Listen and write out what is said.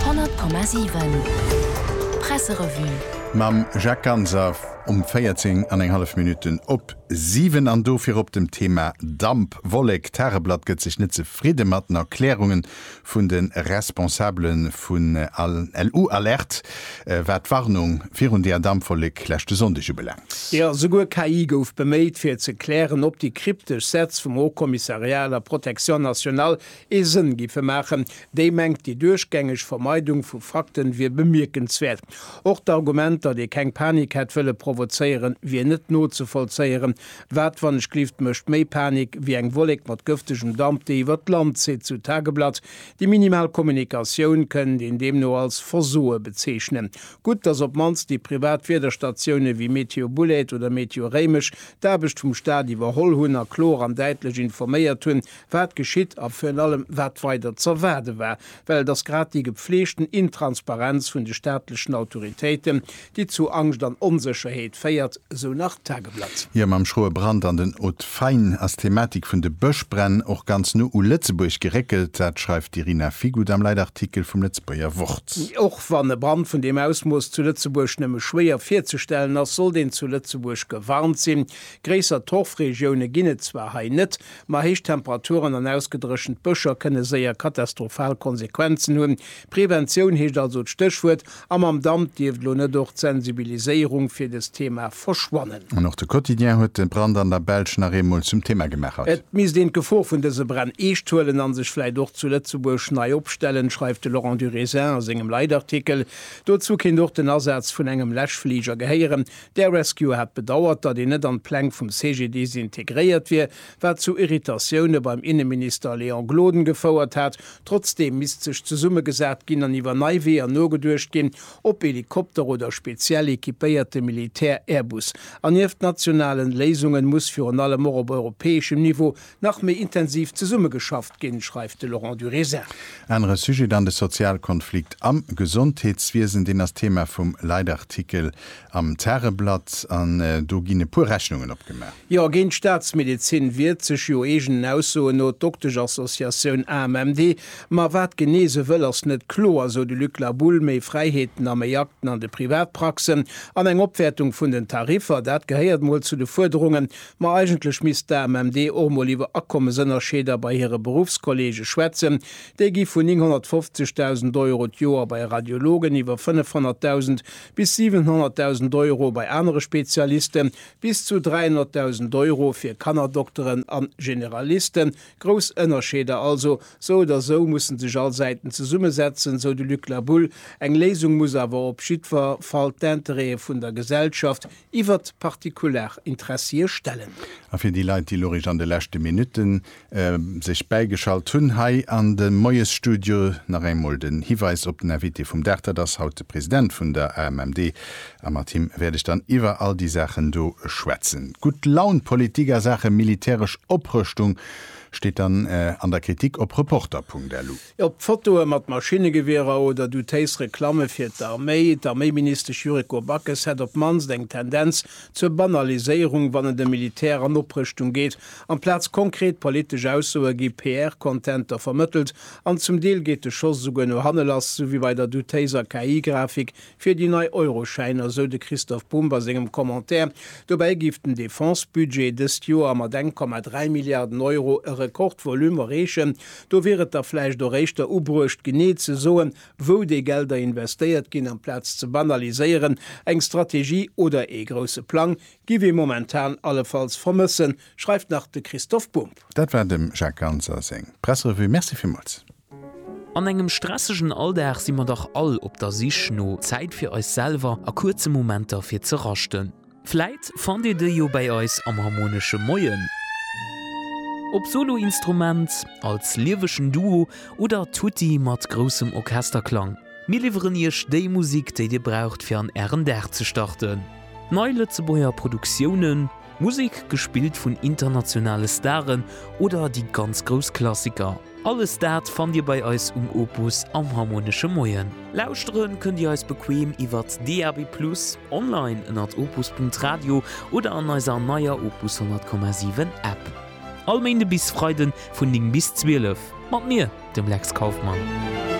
100,7 Presserevue. Mam Jacques Ganser um 14 an eng hallef Minutten op 7 an do virop dem Thema Dampwollek. D'Tageblatt gëtt sech net zefridde mat den Erklärunge vun de Responsabele vun LU Alert, wat d'Warnung virun deeër Dampwollek leschte Sonndeg ubelaangt. Jo, souguer KI gouf beméit, fir ze klären, ob déi kryptesch Sätz vum Haut Commissariat à la protection nationale Ee Sënn giffe maachen, déi mengt, déi duerchgängeg Vermeidung vu Fakten wier bemierkenswäert. Och d'Argument, datt ee keng Panik hätt wëlle provozéieren, wier net nozevollzéieren. Wat, wann ech gleeft, mécht méi Panik wéi eng Wollek mat gëftegem Damp, déi iwwert d'Land zitt, sou d'Tageblatt. Déi minimal Kommunikatioun kënnt een deemno als Versoe bezeechnen. Gutt, datt op d'mannst déi privat Wiederstatioune wéi Météo Bouled oder Météo Réimech d'Aarbecht vum Staat iwwerholl hunn a kloer an däitlech informéiert hunn, wat geschitt a virun allem wat weider z'erwaarde war, well et ass grad déi gepfleegten Intransparenz vun de staatlechen Autoritéiten, déi zu Angscht an Onsécherheet féiert, sou nach d'Tageblatt. Jo, mam schroe Brand an den Hautes Faines ass d'Thematik vun de Bëschbränn och ganz no u Lëtzebuerg geréckelt. Dat schreift d'Irina Figut am Leitartikel vum Lëtzebuerger Wort. Och wann e Brand vun deem Ausmooss zu Lëtzebuerg nëmme schwéier virzestellen ass, sollt een zu Lëtzebuerg gewarnt sinn. Gréisser Torfregioune ginn et zwar hei net, Ma héich Temperaturen an ausgedréchent Bëscher kënne séier katastrophal Konsequenzen hunn. Preventioun heescht also d'Stéchwuert. A mam Damp dierft elo net och d'Sensibiliséierung fir dëst Thema verschwannen. An och de Quotidien huet de Brand an der Belsch nach eemol zum Thema gemaachert. Et misst een d'Gefor vun dëse Bränn eescht huelen a sech vläicht och zu Lëtzebuerg nei opstellen, schreift de Laurent Durésin a sengem Leitartikel. Dozou kéint och den Asaz vun engem Läschfliger gehéieren. D'Air Rescue hat bedauert, datt een net an d'Pläng vum CGDIS integréiert wier, wat zu Irritatioune beim Inneminister Léon Gloden gefouert hat. Trotzdeem misst sech zesummegesat ginn an iwwer nei Weeër nogeduecht ginn, ob Helikopter oder speziell equipéierte Militär-Airbus. An nieft nationalen Léisungen muss virun allem och op europäeschem Niveau nach méi intensiv zesummegeschafft ginn, schreift de Laurent Durézin. Anere Sujet dann, de Sozialkonflikt am Gesondheetswiesen. Deen ass Thema vum Leitartikel am Tageblatt an do ginn e puer Rechnungen opgemaach. Jo, géint d'Staatsmedezin wiert sech jo eegenen Aussoen no d'Dokteschassociatioun AMMD. Ma wat genee se wëll, ass net kloer, sou de Luc La Boule. Méi Fräiheeten a méi Akten an de Privatpraxen an eng Opwäertung vun den Tariffer, dat gehéiert mol zu de Fuerderungen Ma eigentlech misst d'AMMD och mol iwwer Akommesënnerscheeder bei hire Beruffskolleege schwätzen. Déi gi vun 950.000 Euro d'Joer bei Radiologen, iwwer 500.000 bis 700.000 Euro bei anere Spezialiste bis zu 300.000 Euro fir Kannerdokteren a Generalisten. Grouss Ënnerscheeder also. Sou oder sou musse sech all Säiten zesummesetzen, sou de Luc Labulle. Eng Léisung muss awer op jiddwer Fall d'Intérêtë vun der Gesellschaft iwwert partikular Interessie stellen. A fir déi Leit, déi lorich an de leschte Minutten sech bäigeschalt hunn, hei an de Moiesstudio nach engmol den Hiweis op den Invité vum Dag. Dat ass haut de President vun der AMMD a mat him wäert ech dann iwwer all déi Saachen do schwätzen. Gutt Laun Politik a Saache militäresch Oprëschtung steet dann an der Kritik op Reporter.lu. Op Fotoe mat Maschinnegewierer oder doutéis Reklamme fir d'Arméi, D'Arméiministesch Yuriko Backes hätt op d'mannst eng Tendenz zur Banaliséierung, wann et ëm Militär an Oprëschtung geet. Amplaz konkret politesch Aussoe gi PR-Contenter vermëttelt an zum Deel geet de Schoss esouguer no hanne lass, sou wéi bei der doutéiser KI-Grafik Fir déi nei Euroschäiner, esou de Christoph Bumb a sengem Commentaire. Dobäi géif den Defense-Budget dëst Joer mat eng Komma dräi Milliarden Euro e Rekordvolume erreechen. Do wier et da vläicht och éischter ubruecht, genee ze soen, wou déi Gelder investéiert ginn, amplaz ze banaliséieren. Eng Strategie oder ee grousse Plang géif ee momentan allefalls vermëssen, schreift nach de Christoph Bumb. Dat war dem Jacques Ganser seng Pressrevue. Merci villmools. An engem stressegen Alldag si mer dach all op der Sich no Zäit fir eis selwer a kuerze Momenter fir ze raschten. Vläit fannt dir déi jo bäi eis am Harmonesche Moien, op Soloinstrument, als liewegen Duo oder tutti mat groussem Orchesterklang. Mir liwweren iech déi Musik, déi dir braucht fir an ären Dag ze starten. Nei Lëtzebuerger Produktiounen. Musek gespillt vun internationale Staren oder déi ganz grouss Klassiker, alles dat fannt Dir bei eis um Opus am Harmonesche Moien. Lauschtere kënnt Dir eis bequeem iwwert DAB+ online ënnert opus.radio oder an eiser neier Opus 100,7 App. All Méinde bis Freiden vun 9 bis 12 mat mir, dem Lex Kauffmann.